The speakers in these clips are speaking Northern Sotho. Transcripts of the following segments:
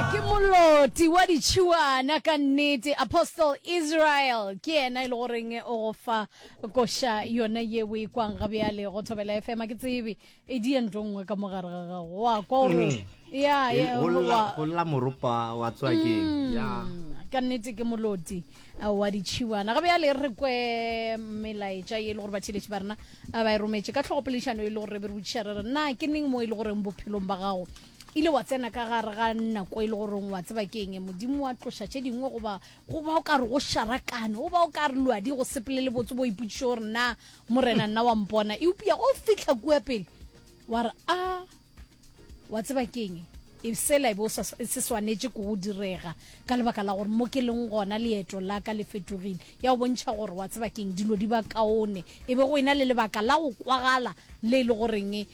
Ke moloti wa ditšhiwana ka nnete. Apostle Israel ke yena e le goreng o go fa koša yona ye o e kwang ga bjale go thobela FM a ke tsebe e di ento nngwe ka mogare ga gago wa kwa o re ya ya, go wa- lla go lla moropa wa tswa ke ya ka nnete ke moloti uh, wa ditšhiwana ga bjale re kwe melaetša ye e le gore batheletši ba rena a ba e rometše ka tlhogopoledišano e le gore re be re botšiša re re na ke neng mo e le goreng bophelong ba gago ile wa tsena ka gare ga nako e le goreng wa tseba ke eng modimo wa tloša tše dingwe goba go ba o ka re go šarakane go ba o ka re luadi go sepele le botse bo ipotšiše gore na morena nna wa mpona eupša go fitlha kua pele wa re a wa tseba ke eng e sela e be e se swanetše ko go direga ka lebaka la gore mo ke leng gona leeto la ka le fetogile ya go bontšha gore wa tseba ke eng dilo di ba kaone e be go ena le lebaka la go kwagala le e le goreng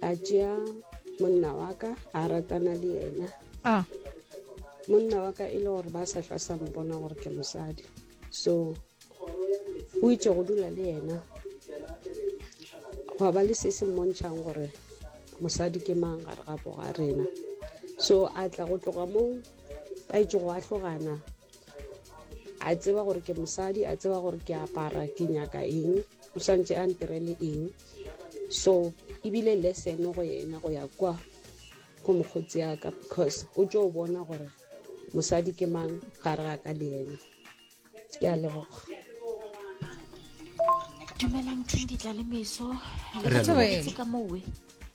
a tšea monna wa ka a ratana le yena a monna wa ka e le gore ba sa hlwa sa mpona gore ke mosadi so o itse go dula le yena gwa ba le se se mmontšhang gore mosadi ke mang gare ga boga rena so a tla go tloga moo ba itse go atlogana a tseba gore ke mosadi a tseba gore ke apara ke nyaka eng o santse a ntirele eng so e bile lesson go yena go ya kwa go mokgotsi ya ka because o tšo bona gore mosadi ke mang gare ga ka le yena ke a leboga dumelang tshinditla le meso lebatse ka mowe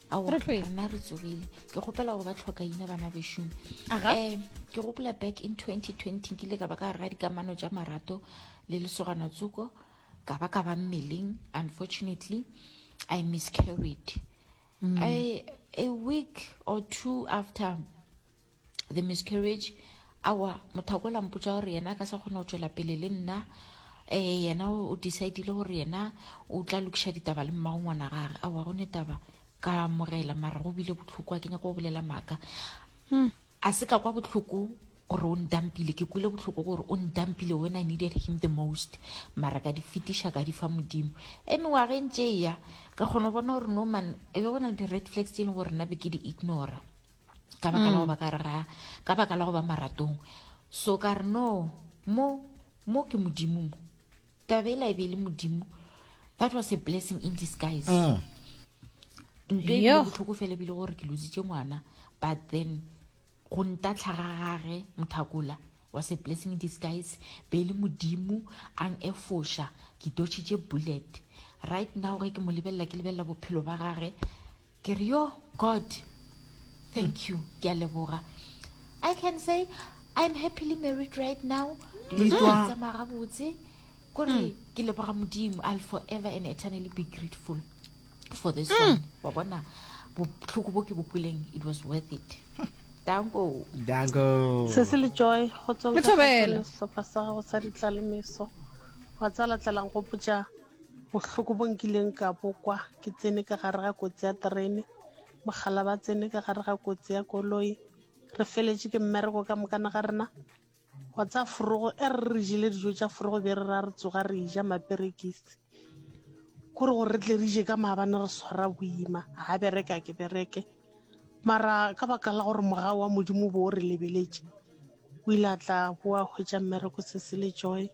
ao rena re tsogile ke gopela gore ba tlhoka ina bana bešomi um eh, ke gopola back in 2020 nkile ka ba ka gare ga dikamano tša marato le lesogana tsoko ka ba ka ba mmeleng unfortunately i miscarried mm. I, a week or two after the miscarriage awa motho a ko lampotsa gore yena ka sa kgone go tswela pele le nna um yena o decidile gore yena o tla lokiša ditaba le mmago ngwana gage awa go ne taba ka amogela mara go bile botlhoko a ke nyako go bolela maaka hmm. A se ka kwa bohloko gore o ntampile, ke kwile bohloko gore o ntampile when I needed him the most, mara ka di fetiša ka di fa Modimo. Ge mengwaga e ntše e ya, ka kgona go bona gore no man, e be go na le di-red flags tše e leng gore nna be ke di ignora ka baka la go ba ka rera, ka baka la go ba maratong. So ka re no, mo, mo ke Modimo mo. taba e la e be e le modimo that was a blessing in disguise mm. nto e bile botlhoko fela ebile gore ke lositse ngwana but then go ntatlhaga gage mothakola was a blessing in disguise be e le modimo ang efoša ke dotšhitše bullet right now ge ke mo lebelela ke lebelela bophelo ba gage Ke re yo God thank you ke a leboga I can say I'm happily married right now dilo tsa ka di tsamaya gabotse kore mm. ke leboga modimo i'll forever and eternally be grateful for this mm. one wa bona botlhoko bo ke bo kweleng it was worth it danko danko se se le joy go tswa go sehlopha sa gago sa ditlalemeso wa tsala tlalang go potsa Bohloko bo nkileng ka bokwa ke tsene ka gare ga kotsi ya terene, mogala ba tsene ka gare ga kotsi ya koloi, re feletše ke mmereko ka mokana ga rena wa tsa forogo e re re jele dijo tša forogo be re ra re tsoga re ja maperekisi kore gore re tle re je ka maabane re swara boima ga bereka ke bereke mara ka baka la gore moga wa modimo bo o re lebeletše o ile a tla boa hwetša mmereko se se le joy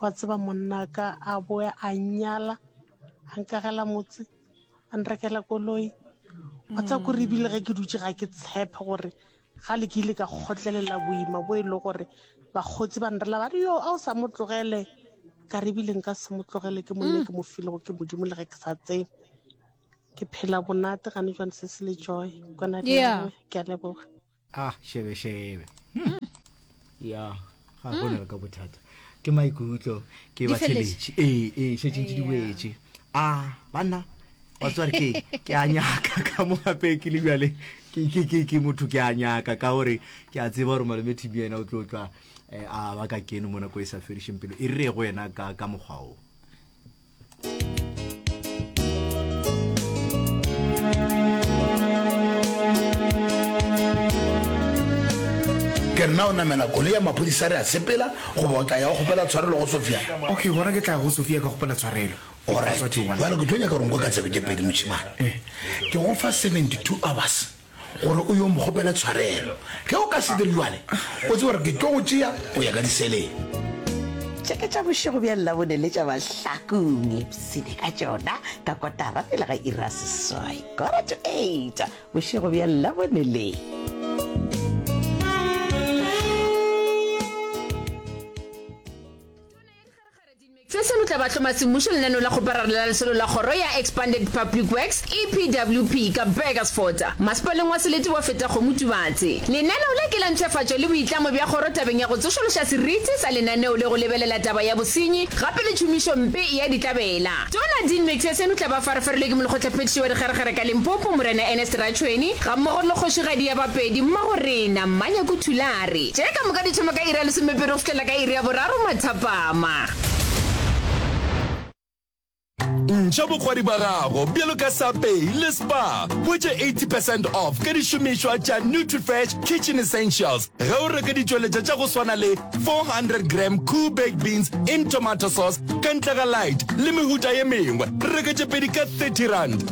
wa tseba monna ka a boe a nnyala a nkagela motse a nrekela koloi wa tseba kore ebile ge ke dutse ga ke tshepe gore ga le ke ile ka kgotlelela boima bo e le gore bakgotsi ba nrela ba re yo a o sa mo tlogele ka re ebile nka se mo tlogele ke monne ke mo filego ke modimo le ge ke sa tsebe ke phela bonate gane jwane se se le joy kwana ke a leboga ah šebešebe hmm. ya ga gona hmm. ka bothata ke maikutlo ke ba tsheletše ee ee šetše ntse di boetše a ah, banna batsware ke ke a nyaka ka mo gape ke le bjale ke motho ke a nyaka ka gore ke a tseba gore malome tb ena o tlo tlwa eh, a ba ka kene mo nako e sa fedišeng pelo e re go ena ka mokgwa o ke nna o namela koloi ya maphodisa re a sepela goba o tla ya go kgopela tshwarelo go sofia okay gona ke tla go sofia ka kgopela tshwarelo jalo ke tlo nyaka gore nko ka tsebe ke pedi moshimane ke go fa 72 hours gore o yo mo kgopele tshwarelo. Ge o ka se dire bjale, o tsebe gore ke tlo go tšea go ya ka diseleng. Tše ke tša bošego bja Labone le tša mahlakong. Ipshine ka tšona ka kotara pele ga iri ya seswai, quarter to eight, bošego bja Labone le. Se se lotla bahloma-semmušo lenaneo la kgoparara la lesolo la kgoro ya Expanded Public Works, EPWP, ka Burgersfort, masepaleng wa Selete wa Fetakgomo Tubatse. Lenaneo le ke la ntšhefatšo le boitlamo bja kgoro tabeng ya go tsošološa seriti sa lenaneo le go lebelela taba ya bosenyi gape le tšhomišo mpe ya ditlabela. Tona Dean Metsea-Senutla ba farafarilwe ke Molekgotlaphethiši wa Dikgeregere ka Limpopo, Morena Ernest Ratšhweni, gammogo le Kgošigadi ya Bapedi, Mmagorena Mmanyaku Thulare. re, Tše ka moka di thoma ka iri ya lesomepedi go fihlela ka iri ya boraro mathapama. Ntšha bokgwadi bja gago bjalo ka Sapei le Spar. Hwetša 80 percent off ka dišomišwa tša Nutrifresh Kitchen Essentials ge o reka ditšweletša tša go swana le 400 gram Koo baked beans in tomato sauce ka ntle ga lite le mehuta ye mengwe. Reka tše pedi ka 30 rand.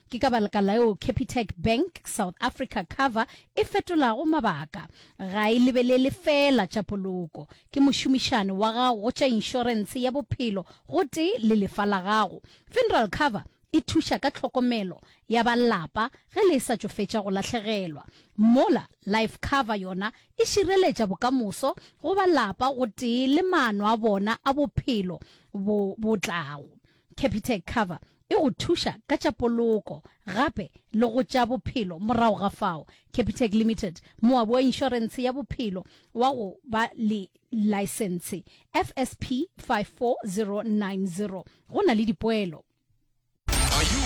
Ke ka baleka laeo Capitec Bank South Africa Cover e fetolago mabaka. Ga e lebelele feela tša poloko. Ke mošomišani wa gago go tša inšorense ya bophelo gotee le lefa la gago. Funeral Cover e thuša ka tlhokomelo ya ba lapa ge le esa tšo fetša go lahlegelwa. Mola Life Cover yona e šireletša bokamoso go ba lapa gotee le maano a bona a bophelo bo bo tlago. Capitec Cover e go thuša ka tša poloko gape le go tša bophelo. Morago ga fao, Capitec Limited, moabi wa inšorentshe ya bophelo wa go ba le laesentshe FSP 54090, go na le dipoelo. Are you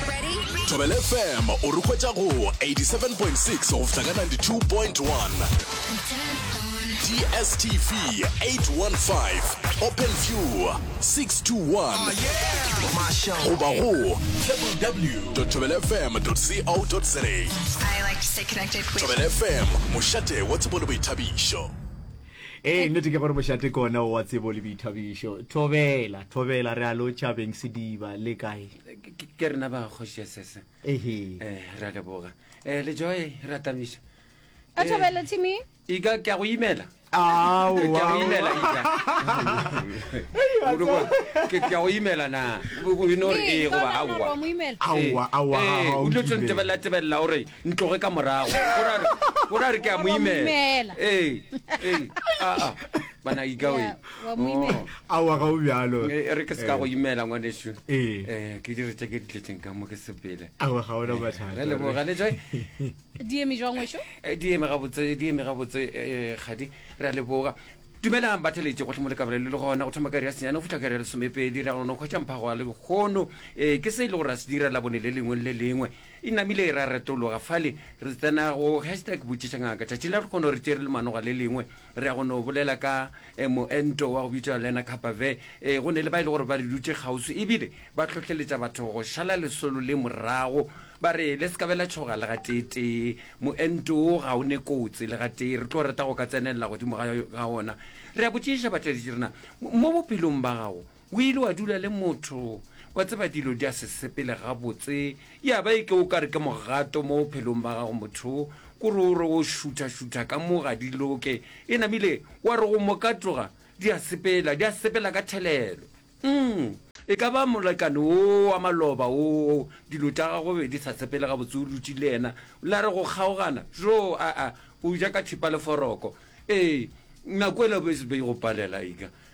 ready? Thobela FM o re hwetša go 87.6 go fihla ka 92.1. DSTV 815 Open View 621 goba go www.thobelfm.co.za I like to stay connected with Thobela FM mošate wa tsebo le boithabišo ee nnete ke gore mošate kona wa tsebo le boithabišo thobela thobela re a lo tšhabeng sediba le kae ke rena ba kgoši ya sese ehe um ra leboga um lejoe ra tamiša ka thobela timmy Ika, ke a go imela. Aowa. Ke a go imela, Ika. Ke a go imela na. O ino re ee goba aowa. Aowa, aowa. O dilo tse ntebelela, tebelela, o re ntloge ka morago. O ra re ke a mo imela. Ee, ee, aa, bana Ika we. Oh. Aowa ga o bjalo. E re ke se ka go imela ngwanešu. Ee. Ke dire tše ke di tletseng ka mo ke sepele. Aowa ga o na mathata. Re leboga le tšwe. di eme jwang wešo Eh, di eme gabotse di eme gabotse eh, kgadi re a leboga dumelang ba theletše gohle mo le kabelele le gona go thoma kari ya senyane go fitlha kari ya lesomepedi re a gona go kgwetša mphago wa lekgono um ke se e le gore a se dira labone le lengwe le le lengwe e namile ra retologa fale re tsena go hashtag botšiša ngaka tšatšing la re kgono re tšere le manoga le lengwe Re ya go no bolela ka moento wa go bitšwa Lena Kapave. Ee, go ne le ba e le gore ba re dutše kgauswi e bile ba hlohleletša batho go šala lesolo le morago. Ba re, Le se ka be la tšhoga le gateetee. Moento wo ga o ne kotsi le gatee. Re tlo rata go ka tsenelela godimo ga wona. Re ya botšišiša batšweletši re na, Mo bophelong ba gago O ile wa dula le motho, wa tseba dilo di a se sepele gabotse, ya ba e ke o ka re ke mogato mo bophelong ba gago motho, ko re o re o šutha-šutha ka mo ga di loke, e namile wa re go mo ka tloga, di a sepela, di a sepela ka thelelo. Umm, e ka ba molekane wo wa maloba wo, dilo tša gagwe be di sa sepele gabotse, o dutše le yena, la re go kgaogana, jo, aa, o ja ka thipa le foroko. Ee, nako e la be e go palela, ega.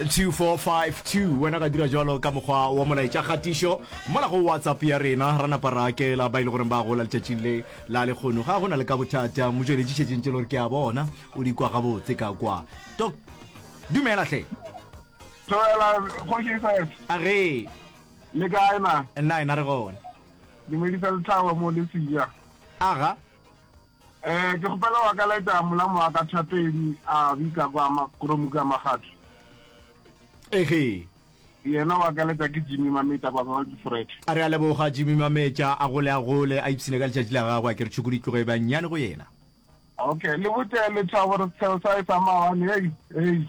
2452 wena ga dira jalo ka mokgwa wa molaetša kgatišo mola go whatsapp ya rena ra napa ra akela ba e le goreng ba gola letšatšing le la lekgono ga go na le ka bothata motšweletši šetšeng tše le gore ke a bona o di kwa gabotse ka kwa to dumela hle Dumela, Kgoši Seth. a re Le kae na? nna ena re gone Dumedisa lethabo mo le seja. aga Ee, ke kgopela wa ka laeta molamo wa ka thapedi a bika kwa makoromu ka magatho. Ege. Yena wa ka laeta ke Jimmy Mametša kwa kwa Fred. A re a leboga Jimmy Mametša a gole a gole a ipsine ka letšatši la gagwe a ke re tšhuku di tloge ba nnyane go yena. Okay, le botše lethabo re setheo sa e sa mawane, hei, hei.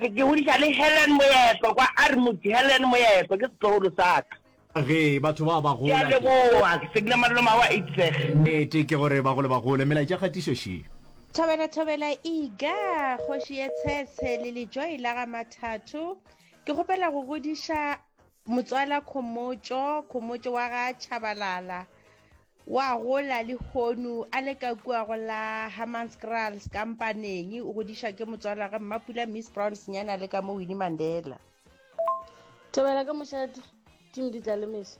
Re ke godiša le Helen Moepo kwa Armut. Helen Moepo ke setlogolo sa ka. Ge batho ba ba gola. Ke a leboga. Ke segile malolo mawa Itseg. Nnete ke gore ba gole ba gole. Melaetša kgatišo šio. Thobela thobela iga kgoši ye tshetshe le lejoi la ga mathatho ke kgopela go godiša motswala khomotšo khomotšo wa ga tšhabalala O a gola lehono a le ka kua go la Hammanskraals ka Mpaneng. O godišwa ke motswalwage Mmapula Miss Brown senyana le ka mo Winnie Mandela. Thobela ka mošate, Tim di tla le mehla.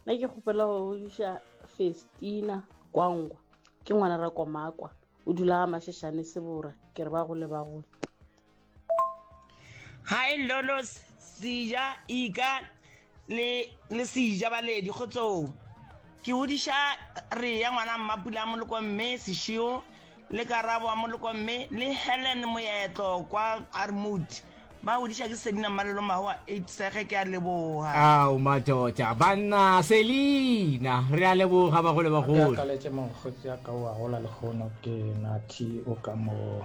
Nna ke kgopela go godiša Festina Kwangwa, ke ngwana Rakomakwa, o dula ga Mashashane Sebora, ke re ba gole ba gole. Hi Lolos, Sija, Ika le le Sija baledi go tsoo. Ke hodiša re ya ngwana mmapula a moloko mme sešio le karabo a moloko mme le Helen moetlo kwa Armut. Ba hodiša ke sedina mmalelo mahoa ipsege ke a leboga. Ao matota banna Selina re a leboga bagolo bagolo. Ke akaletše mokgotsi a ka o a gola lehono ke Nathi o ka moo.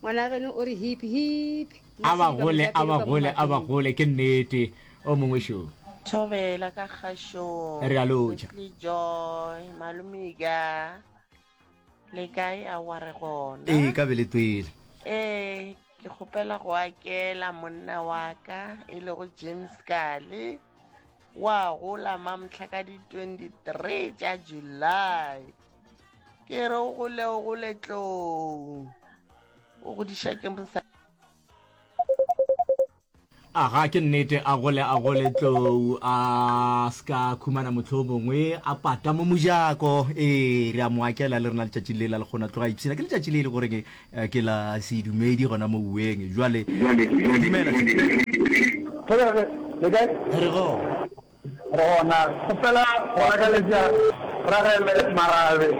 Ngwana geno o re hip, hip. A ba gole, a ba gole, a ba gole, ke nnete. O mongwe šo. Thobela ka kgašong. Re a lotšha. Sesli Joy, Malomika, le kae a wa re gona? Ee, ka be le twele. Ee, ke kgopela go akela monna wa ka e lego James Kale, wa gola Mamhla ka di 23 tša July. ke re o gole o gole tlong o godiša ke mosa aga ke nnete a gole a gole tlou a ska khumana motlho o mongwe a pata mo mojako ee re a mo akela le rena letšatši le la le kgona tloga ipshina ke letšatši le e le goreng eh, ke la sedumedi gona mo ueng jale dumela Gona go fela go lakaletša Ragele marabe,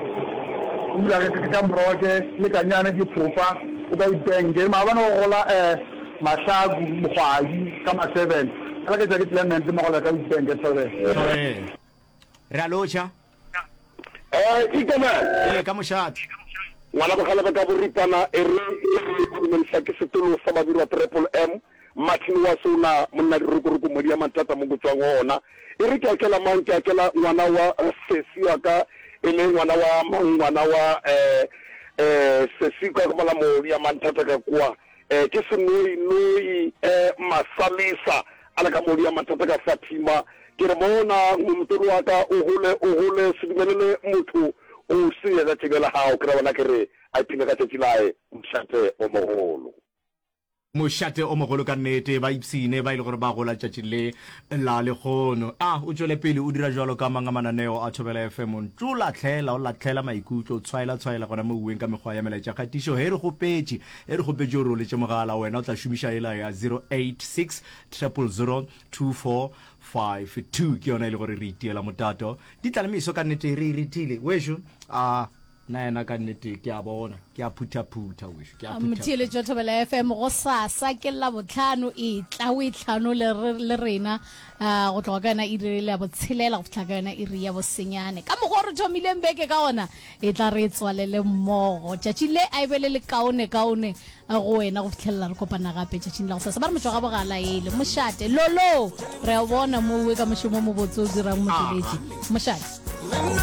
o dula ge ke ka moroke, le kanyane ke phofa o ka ipenge, maabane go gola eh, mahlaku, mogwadi, ka ma seven, a leketša ke Clement le mogole ka ipenge, thobela. Thobela. Re a lotšha. Eh, ke kena. Ee, ka mošate. Ngwana Bogalebe ka boripana e re ke re go dumelisa ke setolo sa Babirwa Triple M, Martin wa Sona, monna dirokoroko modi ya Mantata mo go tswang go ona. E re ke akela mang, ke akela ngwana wa sesi wa ka e le ngwana wa mang, ngwana wa eh, eh, sesi ka go bala modi ya Mantata ka kwa. Ke senoi, noi, masalisa a le ka modu ya mathata ka fatima. Ke re, Bona, ngomotolo wa ka o hole, o hole, se dumelele motho go senyetša tšebe la gago. Ke ra bona ke re, A ipshine ka tšatši laye, mošate o mogolo. Mošate o mogolo ka nnete. Ba ipshine ba e le gore ba gola tšatši le la lehono. A o tšwele pele o dira jwalo ka mang a mananeo a Thobela FM? Ntšo lahlela, o lahlela maikutlo, tshwaela, tshwaela gona mo uweng ka mekgwa ya melaetšakgatišo. He, re kgopetše. Ge re kgopetše gore o letše mogala, wena o tla šomiša yela ya 0860002452. Ke yona e le gore re itiela motato. Di tla le meso ka nnete, re e retile. Wešo, a. Na yena ka nnete, ke a bona. Ke a phuthaphutha, wešo, ke a phuthaphutha. Motheeletšo Thobela FM, gosasa ke Labohlano, etla o itlhano le, le rena go tloga ka yona iri ya botshelela go fihla ka yona iri ya bosenyane. Ka mokgwa o re thomileng beke ka ona, E tla re tswalele mmogo tšatši le a e be le lekaonekaone go wena go fitlhelela re kopana gape tšatšing la go sasa. Ba re motšwa ga bogala ele mošate. Lolo, re a o bona mo uwe ka mošomo o mobotse o dirang motsweletši. Mošate.